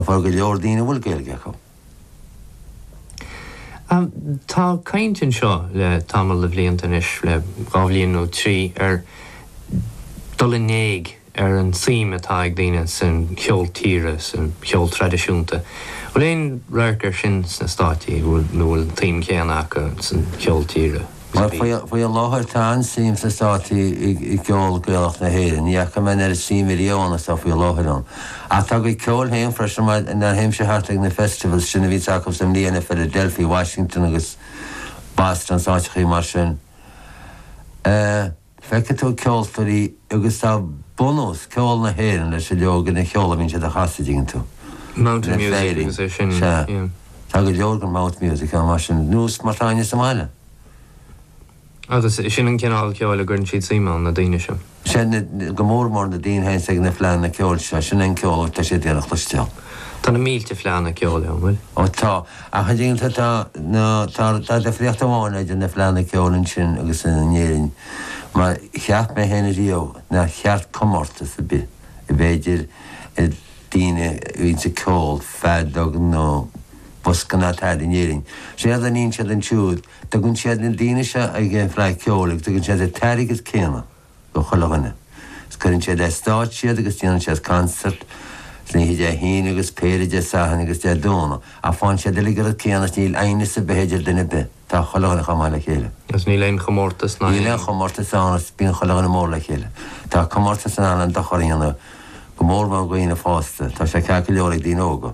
Tá go leor daoine a bhfuil Gaeilge acu. Tá caint anseo le tamall de bhlianta anois, le dhá bhliain nó trí, ar dhul in éag ar an tsuim atá ag daoine san cheol tíre, san cheol traidisiúnta. Bhfuil aon radharc air sin sna Stáit, nó bhfuil an tsuim chéanna acu san cheol tíre? Faoi láthair tá an-suim sna Státaí i gceol Gaelach na hÉireann. Ní fhaca mé an oiread suime riamh is atá faoi láthair ann. Ach tá a gcuid ceoil féin freisin mar nuair a théimse thart ag na festivals sin a bhíonns acu sa mbliain i Philadelphia, Washington agus Boston, is áiteachaí mar sin. Feicfidh tú ceoltóirí agus tá bunús ceol na hÉireann leis an leagan ceoil a mbíonn siad a chasadh, dtuigeann tú. Mountain Ina music Féirín. agus é sin, Sea. yeah. Tá go leor den mouth music ann mar sin, ar nós mar tá againne sa mbaile. Agus sin an cineál ceoil a gcuireann siad suim ann, na daoine sin. Sea, na, go mór mór na daoine a théanns ag na fleánna ceoil seo, sin é an ceol a bhfuil, tá siad ag iarraidh a chloisteáil. Tá na mílte fleánna ceoil ann, bhfuil? Ó tá. Ach rud eile atá, tá difríocht amháin idir na fleánna ceoil ansin agus in Éirinn, mar cheap mé féin riamh nár cheart comórtas ar bith a bheith idir daoine a bhíonns ag ceol, feadóg nó bosca ná tada in Éirinn. Séard a níonn siad ansiúd, tugann siad na daoine seo ag an bhFleadh Cheoil agus tugann siad an t-airgead céanna. do chuile dhuine. Is cuireann siad ar stáitse iad agus déanann siad concert san oíche Dé hAoine agus péire Dé Sathairn agus Dé Domhnaigh ach faigheann siad uilig an rud céanna is níl aighneas ar bith idir duine ar bith, tá chuile dhuine chomh maith le chéile. Is níl aon chomórtas ann? Níl aon chomórtas ann is bíonn chuile dhuine mór le chéile. Tá comórtas in ann an-dochar a dhéanamh, go mór mór do dhaoine fásta, tá sé ceart go leor ag daoine óga.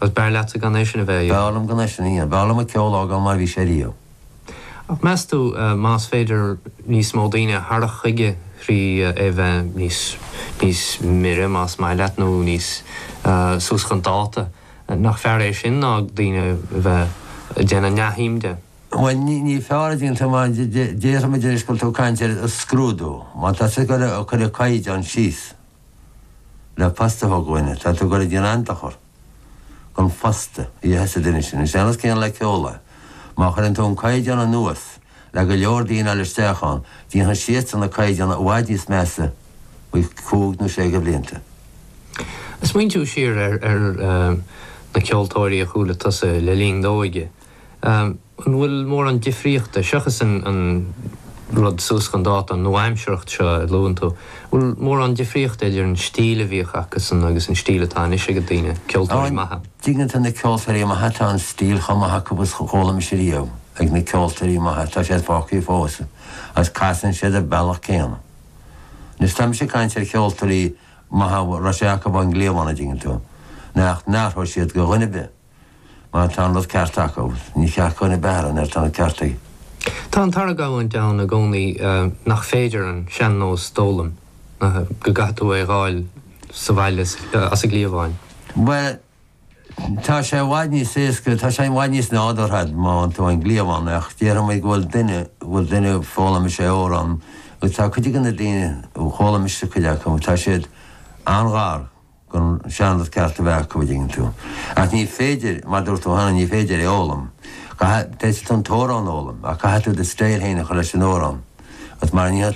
Agus b'fhearr leatsa gan é sin a bheith air? B'fhearr liom gan é sin a dhéanamh. B'fhearr liom an ceol a fhágáil mar a bhí sé riamh. Ach meas tú, más féidir níos mó daoine a tharrac chuige thrí é bheith níos, níos mire, más maith leat, nó níos, suas chun dáta, nach fearr é sin ná daoine a bheith ag déanamh neamhshuim de? Bhuel, ní, ní fearr é sin, tú má, déarfaimid anois go bhfuil tú ag caint ar an scrúdú, má tá sé curtha, cuireadh caighdeán síos. le post a thabhairt do dhuine, tá tú ag goil ag déanamh an-dochar don phost a gheobhas an duine sin. Is é an nós céanna le ceol é. Má chuireann tú an caighdeán anuas le go leor daoine a fháil isteach ann, déanfaidh siadsan na caighdeáin i bhfad níos measa faoi chúig nó sé de bhlianta. Smaointiú siar ar na ceoltóirí a chuala tusa le linn d'óige. An bhfuil mórán difríochta, seachas an rud suas chun dáta, an nua-aimsearacht seo a luann tú, an bhfuil mórán difríochta idir an stíl a bhíodh acusan agus an stíl atá anois ag daoine, ceoltóirí maithe? An dtuigeann tú, na ceoltóirí maithe, tá an stíl chomh maith acu agus chomh hálainn is a bhí riamh ag na ceoltóirí maithe, tá siad fágtha fós agus casann siad ar bealach céanna. Anois, táimse ag caint ar cheoltóirí maithe a raibh sé acu ón gcliabhán, an dtuigeann tú, nach n-athródh siad do dhuine ar bith. Má tá an rud ceart acu, ní ceart go n-athródh nuair atá an ceart acu. Tá an t-argóint ann i gcónaí nach féidir an sean-nós d'fhoghlaim, go gcaithfidh tú é dh'fháil sa bhaile as an gcliabhán. Bhuel, tá sé i bhfad níos éasca, tá sé i bhfad níos nádúrtha má fhaigheann tú ón gcliabhán, ach déarfaimid go bhfuil duine, go bhfuil duine foghlaimíos amhrán, agus tá cuid de na daoine, foghlaimíos cuid acu, tá siad an-ghar. don sean-nós ceart a bheith acu, an dtuigeann tú. Ach ní féidir, mar dúirt tú cheana, ní féidir é fhoghlaim. Caithfidh, féadfaidh tú an t-amhrán a fhoghlaim, ach caithfidh tú do stíl fhéin a chur leis an amhrán, agus mara ndéanfaidh tú,